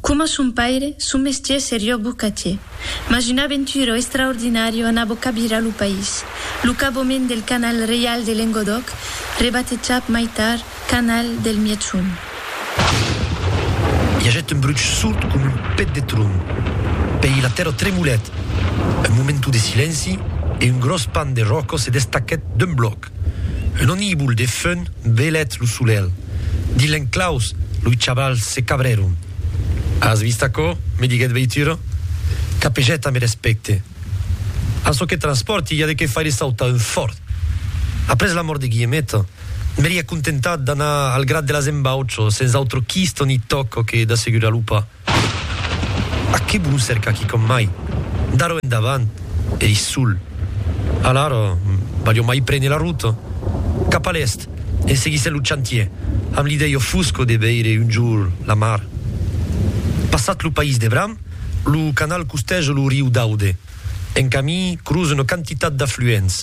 Coma son paire, son mestier serió bocatier, mas una aventura extraordinària anabó cabirar lo país, lo caboment del Canal Reial de Lengodòc, rebatejat mai tard Canal del Mièg-Sond. I agèt un bruch sord coma un pet de tron. Pèi la tèrra tremolèt. Un momentu de silenci e un gròs pan de ròca se destacèt d'un blòc. Un onibul de fum belèt lo solelh. Dins l'enclaus, loi chavals se cabrèron. As vist aquò? me diguèt Veitura. Capejèt ambe respècte. A çò que transpòrti i a de qué faire sautar un fòrt. Après la mòrt de Guillemeta, m'èri acontentat d'anar al grat de las embaucho, sens autre quisto ni tòco que d'assegurar lo pas. Aqui vos lo cerca quicòm mai. D'arrò endavant ei sol. Alara, valió mai prene la rota cap a l'èst en seguissent lo chantier, amb l'idèia fosca de veire un jorn la mar. Passat lo país de Bram, lo canal costeja lo riu d'Aude. En camí crosa una quantitat d'afluents.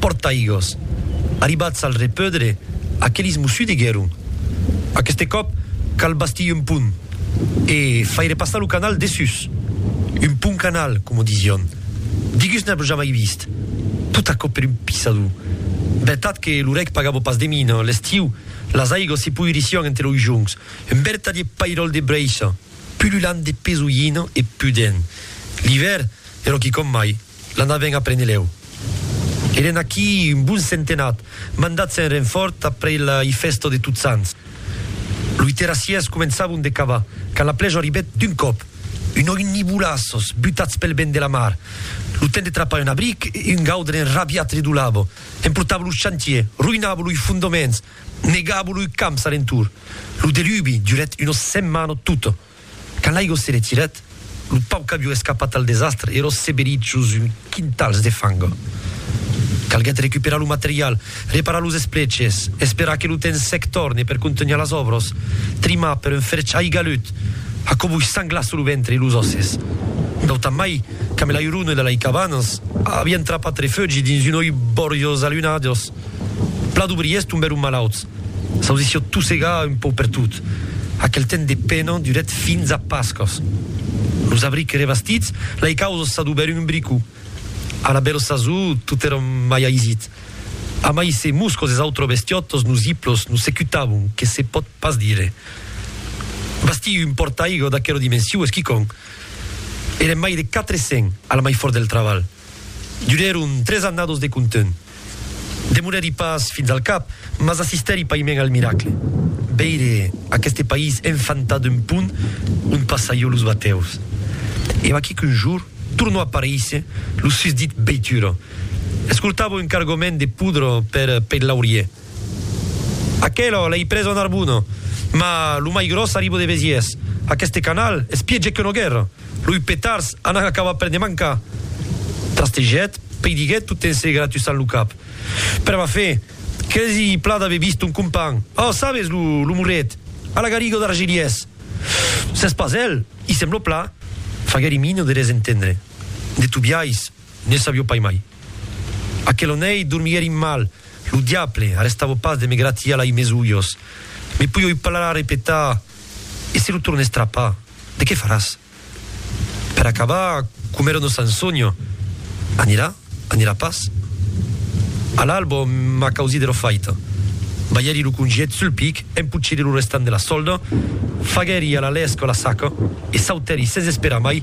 Portaigós. Arribats al repeudre, aquelis mos sudiguèron. Aqueste còp cal bastir un pont e faire passar lo canal dessús. Un pont-canal, coma disión. Digus n'av jamai vist. Tot aquò per un pisador. Vertat que lo reg pagava pas de mina, l'estiu, las aigós se poirissián entre los joncs. Un vertadier pairòl de breicha, pululant de pesolhina e pudent. L'ivèr, ero quicòm mai. L'anavèn a Prenelèu. Èren aquí un bon centenat, mandats en renfòrt après la i fèsta de Totsants. Loi terrassièrs començavon de cavar, quand la plèja arribèt d'un còp. Un òim ni bolassos, butats pel vent de la mar. Lo temps de trapar un abric e un gaudre enrabiat redolava, emportava lo chantier, roïnava loi fondoments, negava loi camps alentour. Lo delubi durèt una setmana tota. Quand l'aigua se retirèt, lo pauc qu'avió escapat al desastre èra seberit jos un quintals de fang. Calguèt recuperar lo material, reparar los espleches, esperar que lo temps sec torne per contunhar las òbras, trimar per un ferch aigalut, aquò vos sanglasse lo ventre e los òsses. Nautamai, quand la irona de lei cabanas avián trapat refugi dins un oi borjós alunhadós, plan d'obriers tombèron malauts. S'audissió tossega un pauc pertot. Aquel temps de pena durèt fins a Pascas. Los abrics e revestits, lei causes s'adubèron un brico. A la bèl sasó, tot èra mai aisit. Amai se moscos es autres bestiòtos nos hiplos nos secutavon, que se pòt pas dire. Bastir un pòrtaigua d'aquera dimensió es quicòm. Èrem mai de quatre cents, a la mai fòrt del trabalh. Durèron tres annados de content. Demorèri pas fins al cap, mas assistèri païment al miracle. Veire aqueste país enfantar d'un pont ont passaió los batèus. E vaquí qu'un jour tornó aparéisser lo susdit veitura. Escortava un cargament de poudre per Pèit-Laurier. Aquela l'èi presa a Narbona, ma lo mai gròs arriba de Besièrs. Aqueste canal es pièger qu'una guèrra. Loi petards anan acabar per ne mancar. Trastejèt, peidiguèt tot en se gratussant lo cap. Pr'aver fait quasi plan d'aver vist ton companh. Ò, sabes, lo, lo morret, a la gariga d'Argelièrs. S'es pas el? I sembla plan. Faguèri mina de res entendre. De tobiais. Ne sabió pas mai. Aquel onei dormièri mal, lo diable, arrestavo pas de me gratiar lai mes ulhos. Me pui oi palar a repetar, e se lo torne estrapar, de qué faràs? Per acabar, coma èra nos Ansonio, anirà, anirà pas? A l'albo, m'a causí de lo faitan. Balhèri lo congiet sul pic, empochèri lo restant de la solda, faguèri a la lèsca la saca e sautèri sens esperar mai,